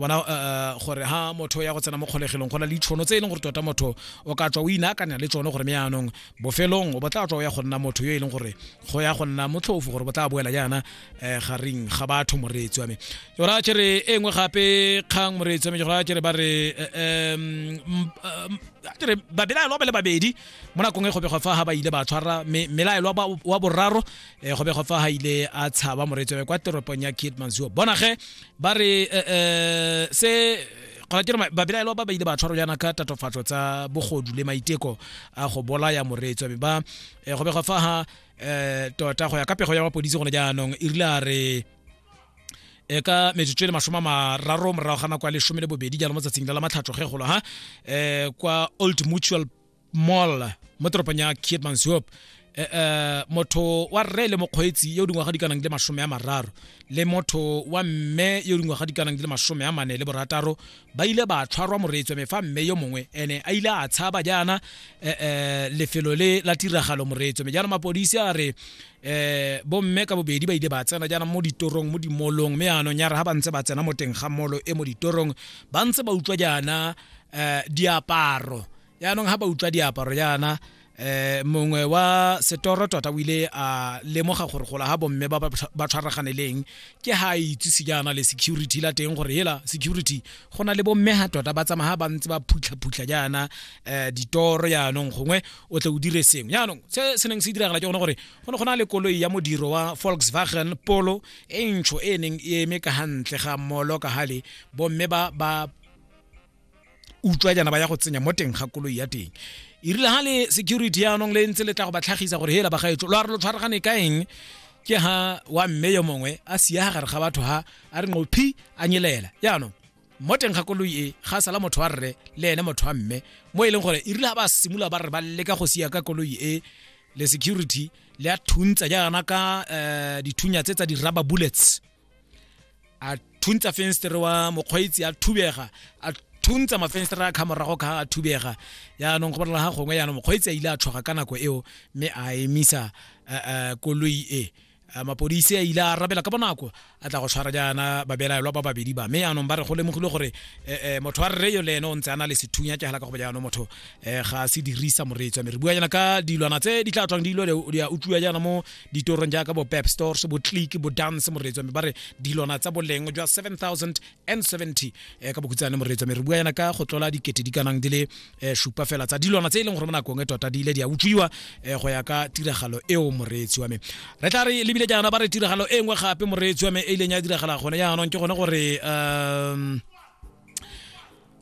bona uh, gore ha motho ya go tsena mo kgolegelong go na le ditšhono tse e leng gore tota motho o ka tswa o inaakanya le tsone gore me yaanong bofelong o botla tswa o ya go nna motho yo e leng gore go ya go nna motlhofo gore botla boela jaana um eh, gareng ga batho moreetsi wa me ke gora kere e nngwe gape kgang moreetsi wa me ke gora kere ba re um kere babelaelwa ba le babedi mo nakong e gobego fa ga ba ile ba tshwara melaelwa wa boraro um gobego fa ga ile a tshaba moreetsi wa me kwa teropong ya kid mansuo bona ge ba re um se gona ke re babelaelwa ba ba ile ba tshwarwa jaana ka tatofatso tsa bogodu le maiteko a go bolaya moreetswa mme ba eh, go bega fa ha um tota go ya ka pego ya mapodisi gone jaanong e rile a re e ka metsotso e le masome a mararo morago ga nako ya lesome le bobedi jalo mo tsatsing la la matlhatso ge golo ha um kwa old mutual mall mo toropong ya kietmansop um eh, eh, motho wa rre le mokgweetsi yo dingwaga di kanang le masome ya mararo le motho wa mme yo dingwaga di kanang le masome ya mane le borataro ba ile ba tshwarwa moreetswa me fa mme yo mongwe ene a ile a tshaba jaana um lefelo le la tiragalo moreetswa me jaana mapodisi a re eh bomme ka bobedi ba ile ba tsena jaana mo ditorong mo dimolong mme anong ya re ga ba ntse ba tsena mo teng ga molo e mo ditorong ba ntse ba utlwa jaana eh diaparo yaanong ha ba utlwa diaparo yana eh mongwe wa setoro tota o ile a lemoga gore gola ga bomme ba ba tshwaragane leng ke ha a itsise jaana le security la teng gore hela security go na le bomme ha tota ba tsamaya ba ntse ba phutlha-phutlha jaana um ditoro yaanong gongwe o tle o dire sengwe yaanong se se neng se diragala ke gone gore go ne go na le koloi ya modiro wa volkswagen polo e ntsho e neng e eme ka gantle ga molo ka gale bomme ba ba utswa jana ba ya go tsenya mo teng ga koloi ya teng e rile ga le security yaanong le ntse le tla go ba tlhagisa gore hela bagaetso lo a re lo tshwaragane ka eng ke ha wa mme yo mongwe a sia gare ga batho ha a re nqophi a nyelela yaanong mo teng ga koloi e ga sala motho wa rre le ene motho wa mme mo e leng gore e rile ga ba simolola ba re ba leka go sia ka koloi e le security le a thuntsa jaana ka eh, dithunya tse tsa di-rubber bullets a thuntsa fenstere wa mokgweetsi a thubega a thuntsa mafenstere a khamorago ka a thubega yaanong go bolela ga gongwe yaanong mokgweetsi a ile a tshoga ka nako eo mme a emisa eh, eh, koloi e Eh, mapodisi a ile a arabela ka bonako a tla go tshwara jaana babelaelwa ba babedi ba mme yaanong ba re go lemogile gore eh, eh, motho wa rre yo le ene o ntse a na le sethunya ke gela ka go jaanong motho ga a se dirisa moreetswa mme re bua jaana ka dilwana tse di tla tswang dilo di a utlwiwa jaana mo ditorong jaaka bo pep stores bo click bo dance moreetsi wa me ba re dilwana tsa boleng jwa 7070 eh, ka bokhutsane moreetsi wa me re bua yana ka go tlola dikete di kanang di le eh, supa fela tsa dilwana tse e leng gore mo nakong e tota di ile di a utswiwa eh, go ya ka tiragalo eo moreetsi wa me re tla re lebile jaana ba re tiragalo e nngwe gape moreetsi wa me e ileng ya diragala gone jaanong ke gone gore um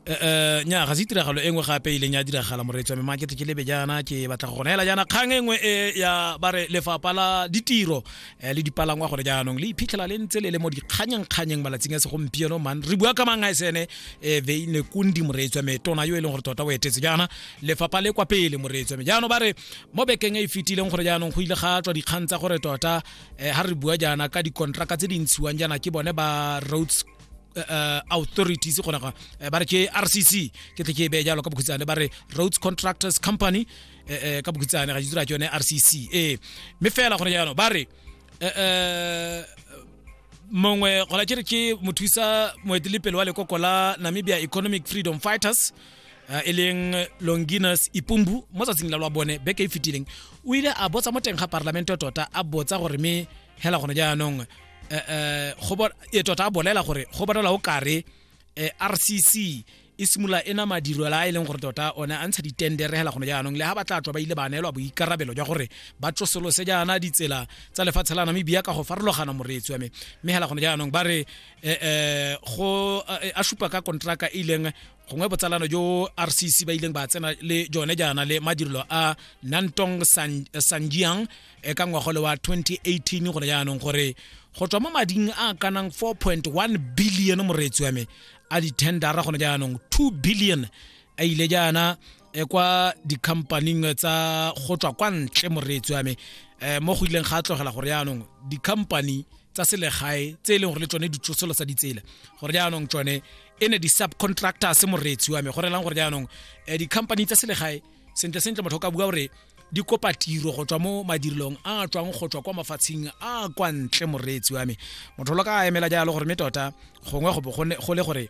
Eh, eh, nya ga se tiragalo e nngwe gape e leng ya diragala moreetsi wa me makete ke lebe jaana ke batla go gona hela jaana kgang e nngwe e ya ba re lefapha la ditiro eh, le dipalangwa gore jaanong le iphitlhela le ntse le le mo dikganyengkganyeng malatsing a segompieno man re bua ka mang a sene um veine kundi moreetsi wa me tona yo e leng gore tota o etetse jaana lefapha le kwa pele moreetsi wa me jaanong ba re mo bekeng e e fetileng gore jaanong go ile ga tswa dikgang tsa gore tota um ga re bua jaana ka dikontraka tse di ntshiwang jaana ke bone ba roads uh, authorities gona ga eh, ba re ke rcc ke tle ke e beye jalo ka bokhutshane ba re roads contractors company eh, eh, ka bokhutshane ga ditsira ke yone rcc ee mme fela gone jaanong ba re eh, eh, mongwe gona ke re ke mothusa moetelepele wa lekoko la namibia economic freedom fighters uh, e leng longinus ipumbu mo tsatsing la lwa bone beke e fetileng o ile a botsa mo teng ga parlamente tota a botsa gore me hela gone jaanong eh, eh, e tota a bolela gore go bonala o kare eh, rcc e simolola e na madirelo a e leng gore tota one a ntsha ditendere hela gone jaanong le ha ba tla tswa ba ile ba neelwa boikarabelo jwa gore ba tsosolose jaana ditsela tsa lefatshe la namibia ka go farologana moreetsi wa me mme hela gone jaanong ba re um go a supa ka kontraka e ileng gongwe botsalano jo rcc ba ileng ba tsena le jone jaana le madirelo a nantong sanjiang e ka ngwagole wa 2018 go le jaanong gore go tswa mo mading a kanang 4.1 billion moreetsi wa me a dithendara gone jaanong 2 billion a ile jaana e kwa dikhampaning tsa go tswa kwa ntle moreetsi wa me eh, mo go ileng ga tlogela gore jaanong dikhampani tsa selegae tse e leng gore le tsone ditsosolo tsa ditsela gore jaanong tsone e ne di-subcontractors moreetsi wa me go relang gore jaanong eh, dikhampani tsa selegae sentle sentle motho ka bua gore di kopa tiro go tswa mo madirelong a tswang go tswa kwa mafatsheng a kwa ntle moreetsi wa me motho lo ka emela jalo gore me tota gongwe go le gore